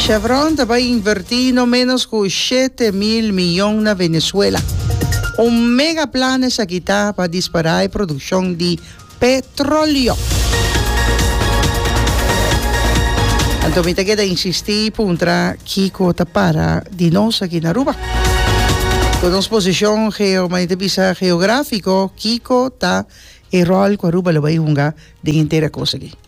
Chevron ta bai invertí no ménos ku shete mil miyon na Venezuela. Un mega plan esaki ta pa dispará e produkshon di petróleo. Anto mi ta keda insistí i puntra kiko ta para di nos aki na Aruba. Ku nos posishon geo, mane ta bisa, geográfiko, kiko ta e ròl ku Aruba lo bai hunga den henter e kos aki?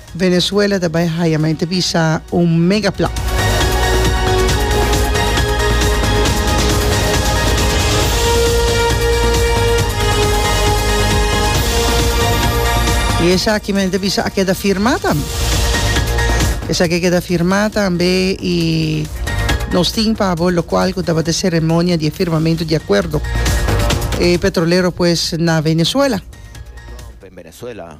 Venezuela ta bai haya mente bisa un mega plan. Y esaki mente bisa a keda firma tambe. Esaki a keda firma tambe y nos tin pabo locual cu tabata ceremonia di e firmamento di acuerdo e petrolero pues na Venezuela. Trump en Venezuela.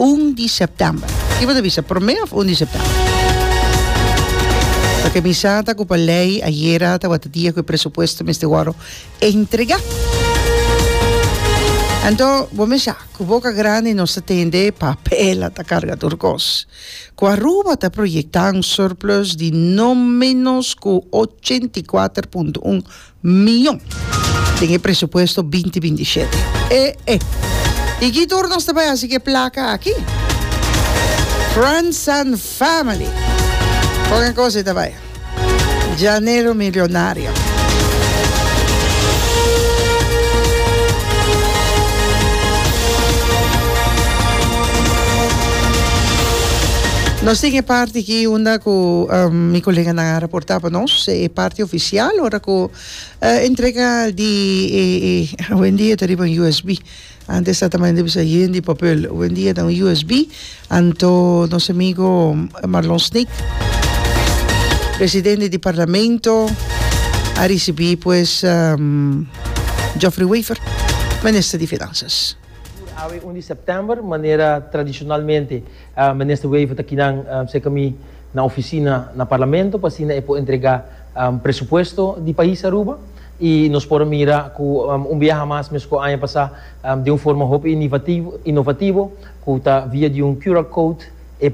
un di sèptèmber. Ki bo ta bisa, promé òf un di sèptèmber? Pasobra mi sa ta ku pa lei ayera tabata dia ku e presupuesto mester wòrdu entregá. Anto bo mi sa ku boka grandi nos ta tende papel, a ta karga tur kos. Ku Aruba ta proyektá un surplus di no ménos ku ochenta i kuater punto un mion den e presupuesto binti binti shete. E e y ki tur nos ta bai haci cu e placa aki? Friends and family con e cosa y ta bai Llanero milionario. Nos tin e parti aki unda cu mi coleganan a reporta pa nos e parti ofi. Sial ora cu e entrega di e e hoendia ta riba un usb antes ta tamai di bisa yen di papel hoendia ta un usb anto nos amigo Marlon Snick presidente di parlamento a ricibi pues Geoffrey Wever minister di finanzas. Tur awe un di september manera tradicionalmente. Minister Wever ta kinan cerca mi na oficina na Parlamento pa asina e por entrega presupuesto di pais Aruba y nos por a mira cu un biaha mas mescua aña pasa den un forma hopi inovativo cu ta via di un QR code e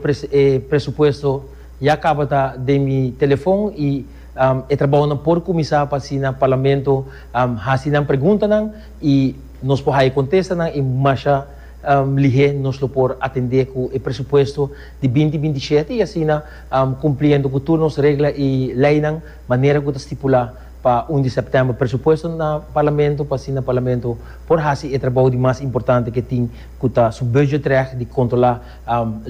presupuesto ya cabata den mi telefon y e trabahonan por cuminsa pa asina Parlamento haci nan preguntanan y nos por haci contestanan y masha Lihé nos lo por atendé ku e presupuesto di binti binti i shete i asina kumpliendo ku tur nos regla i leinan manera ku ta stipulá pa un di sèptèmber presupuesto na Parlamento pa asina Parlamento por hasi e trabou di mas importante ku e tin ku ta su budgetrecht di kontrolá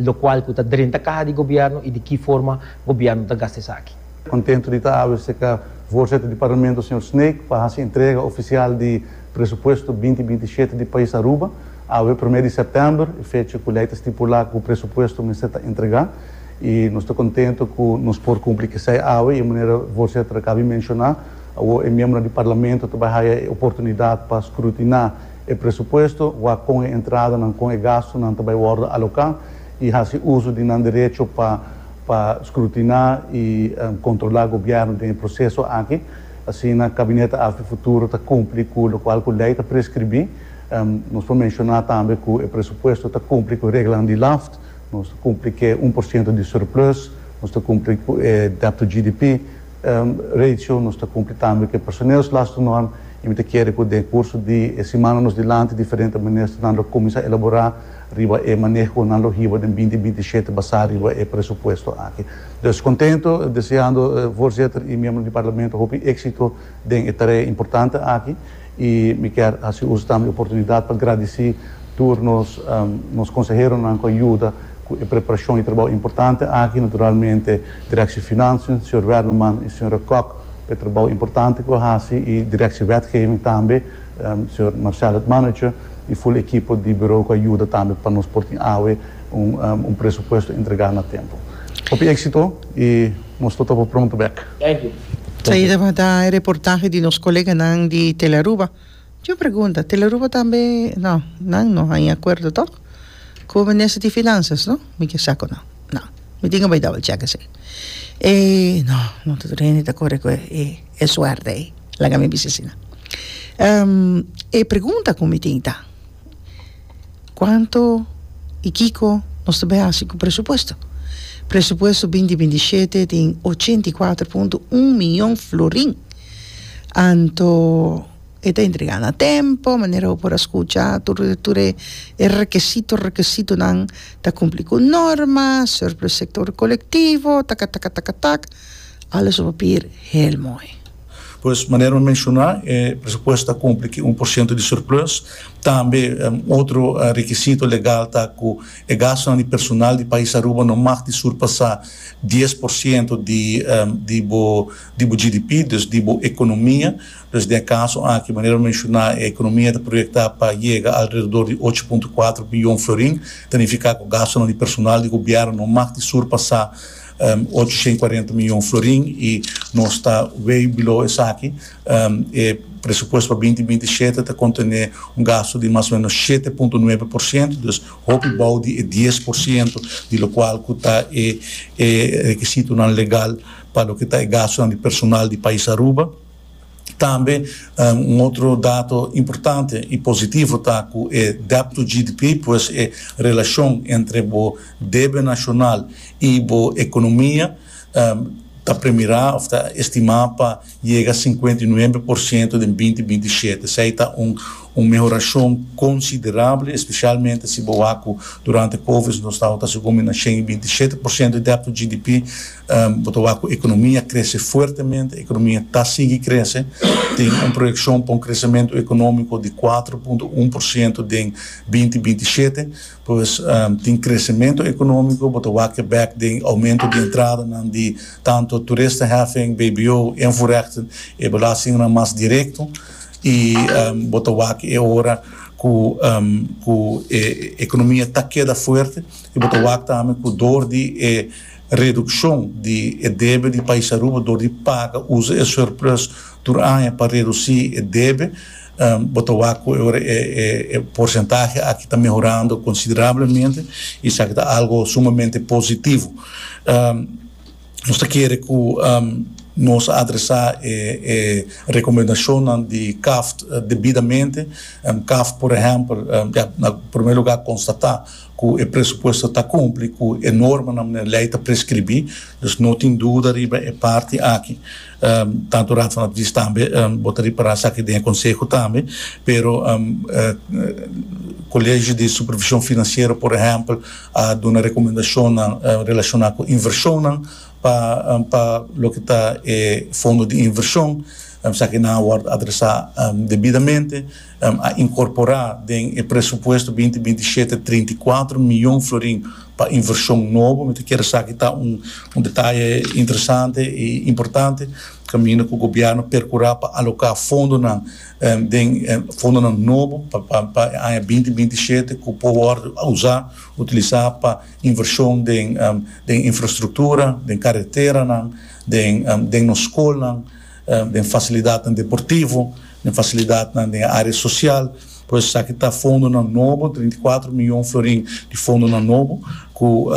lokual ku ta drenta kaha di gobièrnu i di ki forma gobièrnu ta gasta esaki. Kontentu di ta abri ese ka Voorzitter di Parlamento señor Snake pa hasi entrega ofisial di Presupuesto binti binti shete di Pais Aruba, Awe promé di sèptèmber e fecha ku lei ta stipulá ku presupuesto mester ta entregá i nos ta kontentu ku nos por kumpli kesei awe i manera Voorzitter a kabi menshoná awor e miembronan di Parlamento ta bai haya e oportunidat pa skrutiná e presupuesto, wak kon e entradanan, kon e gastunan ta bai wòrdu aloká i hasi uso di nan derecho pa pa skrutiná i kontrolá gobièrnu den e proseso aki. Asina Kabinete Alto e Futuro ta kumpli ku lokual ku lei ta preskribí. Nos por menshoná tambe ku e presupuesto ta kumpli ku e reglanan di LAFT. Nos ta kumpli ku e un por siento di surplus. Nos ta kumpli ku e debt to GDP ratio. Nos ta kumpli tambe ku e personeelslastennorm. I mi ta kere ku den kurso di e simannan nos dilanti diferente ministernan lo kuminsá elaborá. riba e maneho cu nan lo hiba den binti binti shete basá riba e presupuesto aki. Dus contento, deseando Voorzitter y miembronan di Parlamento hopi éxito den e tarea importante aki y mi kier haci uso tambe e oportunidad pa gradici tur nos nos conseheronan cu a yuda cu e preparacion y trabou importante aki, naturalmente Directie Financiën, señor Werleman y señora Kok pa e trabou importante cu a haci y Directie Wetgeving tambe, señor Marcel het mannetje. y full ekipo di Bureau cu a yuda tambe pa nos por tin awe un presupuesto entregá na tempo. Hopi exito y nos ta topa pronto bek. Thank you. Sayi tabata e reportahe di nos coleganan di Telaruba. Tin un pregunta, Telaruba tambe? No, nan no haña acuerdo tok. Ku minister di finansias no mi ke sa ku nan nan mi tin ku bai double check esei e no no tur hende ta kore ku e suerte ei laga mi bisa asina e pregunta ku mi tin ta kuantu i kiko nos ta bai hasi ku presupuesto presupuesto binti binti i shete tin ochenta i kuatro punto un miyon florin anto E ta entrega na tempo, manera bo por a scucha tur e tur e requisito requisitonan ta cumpli cu norma, surplus sector colectivo, taka taka taka tak, alles op papier heel mooi. Pues manera bo menciona e presupuesto ta cumpli cu un por ciento di surplus, tambe otro requisito legal ta cu e gastonan di personal di pais Aruba no mag di surpasa dies por ciento di di bo GDP, dus di bo economia. Pues den e kaso aki, manera lo menshoná, e ekonomia ta proyektá pa yega alredor di ocho punto kuater biyon florin, ta nifiká ku gastunan di personal di gobièrnu no mag di surpasá ochocientos y cuarenta miyon florin i nos ta way below esaki. E presupuesto pa binti binti i shete ta kontené un gastu di mas o ménos shete punto nuebe por siento, dus hopi bou di e dies por siento di lokual ku ta e rekisitonan legal pa loke ta e gastunan di personal di pais Aruba. Tambe un otro dato importante y positivo ta cu e debt to GDP, pues e relacion entre bo debe nacional y bo economia ta premira of ta estima pa yega cincuenta y nuebe por ciento den binti binti shete. Esey ta un mehoracion considerable, especialmente si bo wak cu durante Covid nos tabata segun mi na shen y binti shete por ciento di debt to GDP, Bo ta wak cu economia crece fuertemente. Economia ta sigui crece. Tin un proyeccion pa un crecemento economico di cuatro punto un por ciento den binti binti shete. Pues, tin crecemento economico. Bo ta wak e bek den aumento di entradanan di tanto toeristenheffing, bbo, invoerrechten, e belastingnan mas directo. Y bo ta wak e ora cu cu e economia ta keda fuerte y bo ta wak tambe cu door di e Redukshon di e debe di Pais Aruba dor di paga usa e surplus tur aña pa redusí e debe. Bo ta wak ku ora e porsentahe aki ta mehorando konsiderablemente i esaki ta algu sumamente positivo. Nos ta kere ku nos a adresá e rekomendashonnan di Kaft debidamente. Kaft, por ehèmpel, ya na primer lugá konstatá. ku e presupuesto ta kumpli ku e normanan i lei ta preskribí, dus no tin duda riba e parti aki. Tantu Raad van Advies tambe bo ta ripará esaki den e konseho tambe, pero Kolegio di Supervishon Finansiero por ehèmpel a duna rekomendashonnan relashoná ku invershonnan pa pa loke ta e fondo di invershon, esaki nan a wòrdu adresá debidamente. a inkorporá den e presupuesto binti binti shete trinta i kuater mion florin pa invershon nobo. Mi ta kere esaki ta un un detaye interesante i importante kaminda ku gobièrnu perkurá pa aloká fondonan den fondonan nobo pa pa pa e aña binti binti shete ku por wòrdu usá utilisá pa invershon den den infrastruktura, den kareteranan, den den nos skolnan. den fasilidatnan deportivo, den fasilidatnan den e área sosial, por esaki ta fondonan nobo, treinta i kuater mion florin di fondonan nobo ku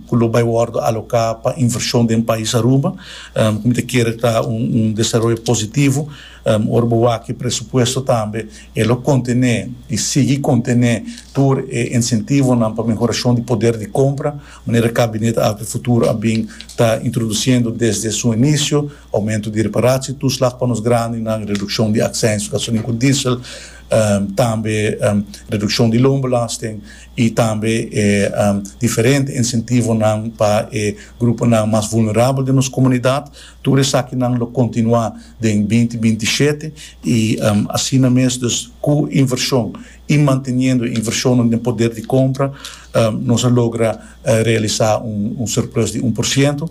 ku lo bai wòrdu aloká pa invershon den pais Aruba, ku mi ta kere ta un un desaroyo positivo, ora bo wak e presupuesto tambe e lo kontené i sigui kontené tur e insentivonan pa mehorashon di poder di kompra, manera Kabinet Alto e Futuro a bin ta introdusiendo desde su inisio. Aumento di reparatie toeslag pa nos grandinan, reduccion di accijns gasolin cu diesel, tambe reduccion di loonbelasting y tambe e diferente incentivonan pa e gruponan mas vulnerabel den nos comunidad. Tur esakinan lo continua den binti binti i shete y asina mes dus cu inversion y manteniendo e inversionnan den poder di compra nos a logra realisa un surplus di un por ciento.